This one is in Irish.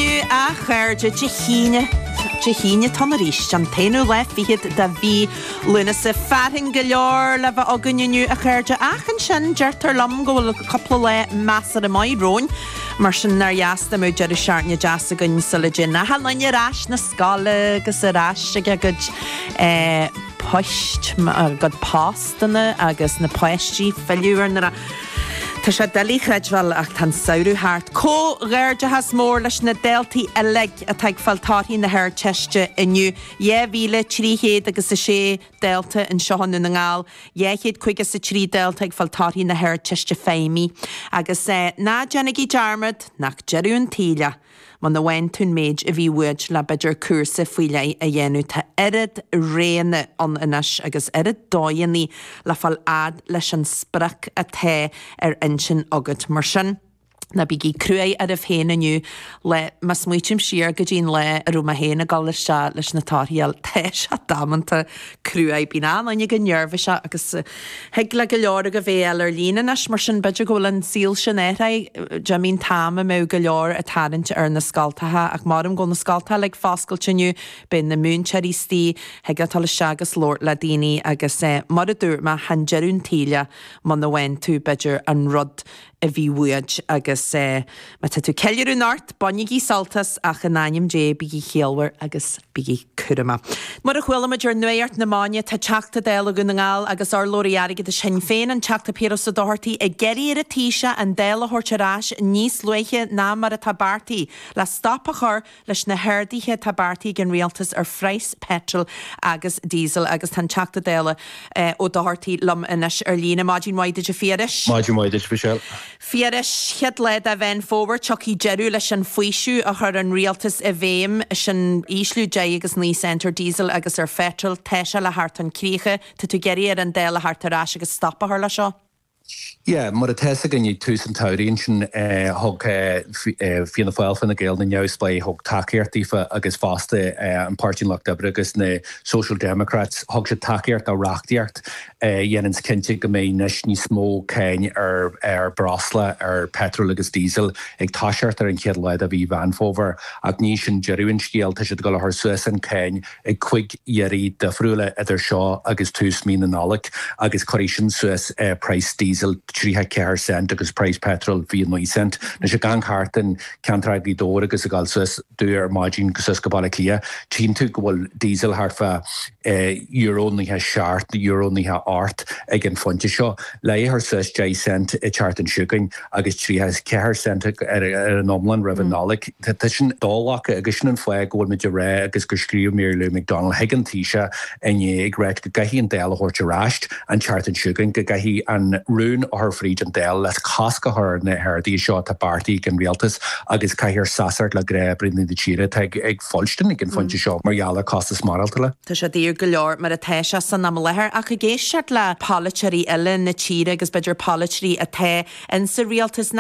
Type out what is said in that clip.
Inniu, a chairde, Dé hAoine, Dé hAoine atá ann arís, an t-aonú lá fichead de mhí Lúnasa. Fearthainn go leor le bheith againn inniu, a chairde, ach ansin deirtear liom go bhfuil cúpla lá measartha maith romhainn. Mar sin, nár dheas dá mbeadh deireadh seachtaine deas againn sula dtéann an chlann ar ais na scoile agus ar ais ag a gcuid poist, a gcuid postanna agus na páistí filleadh ar na. Tá sé doiligh a chreidbheáil ach tá an samhradh thart. Comhghairdeachas mór leis na daltaí uilig atá ag fáil torthaí na hArdteiste inniu. Dhá mhíle, trí chéad agus a sé dalta anseo i nDún na nGall, dhá chéad caoga is a trí dalta ag fáil torthaí na hArdteiste Feidhmí. Agus ná déanaigí dearmad nach deireadh an tsaoil é! Muna bhfaigheann tú an méid a bhí uait le b'fhéidir cúrsa faoi leith a dhéanamh. Tá oiread roghanna ann anois agus oiread dóigheannaí le fáil fhad leis an sprioc atá ar intinn agat. Mar sin, ná bígí cruaidh oraibh féin inniu le má smaoitím siar go dtí an lá a raibh mé féin ag dul isteach leis na torthaí a fháil. Tá sé damanta. cruaidh. Bíonn achan duine chomh neirbhíseach agus thig le go leor agaibh é a fháil ar líne anois, mar sin b'fhéidir go bhfuil an saol sin athraithe. D'imigh an t-am a mbeadh go leor ag tarraingt ar na scoltacha, ach measaim go bhfuil na scoltacha uilig foscailte inniu. Beidh na múinteoirí istigh, thig leat dul isteach agus labhairt le daoine, agus mar a dúirt mé, chan deireadh an tsaoil é muna bhfaigheann tú, b'fhéidir, an rud. a bhí uait, agus má tá tú ag ceiliúradh anocht, bainigí sult as, ach in ainm Dé, bígí ciallmhar agus bígí cúramach. Mar a chuala muid ar nuacht na maidine, tá Teachta Dála Dhún na nGall agus urlabhraí airgeadais Shinn Féin, an Teachta Piaras Ó Dochartaigh, ag iarraidh ar an Taoiseach an Dáil a thabhairt ar ais níos luaithe ná mar atá beartaithe le stop a chur Leis na harduithe atá beartaithe ag an Rialtas ar phraghas peitril agus díosail agus tá an Teachta Dála Ó Dochartaigh liom anois ar líne. Maidin mhaith duit, a Phiarais. Maidin mhaith duit, Michelle. A Phiarais, an chéad lá de Mheán Fómhair, tiocfaidh deireadh leis an fhaoiseamh a chuir an Rialtas i bhfeidhm, sin ísliú deich agus naoi cent ar díosal agus ar pheitreal. Tá sé le theacht chun críche. Tá tú ag iarraidh ar an Dáil a theacht ar ais agus stop a chur leis seo? Yeah, mar atá 'fhios againn ag tús an tsamhraidh ansin thug Fianna Fáil, Fine Gael, na neamhspleáigh thug tacaíocht daofa agus fosta an Páirtí an Lucht Oibre agus na Social Democrats thug siad tacaíocht do reachtaíocht a dhéananns cinnte go mbeidh anois níos mó cáin ar ar breosla, ar petrol agus diesel ag toiseacht ar an chéad lá de mhí Mheán Fómhair ach ní sin deireadh an scéal tá siad ag dul a chur suas an cáin ag cúig dhátaí difriúla idir seo agus tús mí na Nollag agus cuirfidh sin suas praghas Diesel 34 cent agus praghas Petrol 29 cent. Anois ag gabháil thart in ceantar Ghaoth Dobhair agus ag gabháil suas domh ar maidin go suas go Baile Átha Cliath tchíonn tú go bhfuil Diesel thart fá euro nócha seacht, euro nócha ocht ag an phointe seo. Le é a chur suas deich cent an tseachtain seo chugainn. agus 34 cent ar an iomlán roimh an Nollaig. Tá sin doghlactha agus sin an fáth go bhfuil muid ag rá agus gur scríobh Mary Lou McDonald chuig an Taoiseach inné ag rá go gcaithfidh an Dáil a thabhairt ar ais an tseachtain seo chugainn, go gcaithfidh an rún a chur fríd an Dáil le cosc a chur ar na harduithe seo atá beartaithe ag an Rialtas agus caithfear seasamh le gnáthbhunadh na tíre atá ag fuilstin ag an phointe seo mar gheall ar costas maireachtála. Tá sé daor go leor mar atá sé san am i láthair ach ag éisteacht le polaiteoirí eile na tíre agus b'fhéidir polaiteoirí atá insa rialtas nach.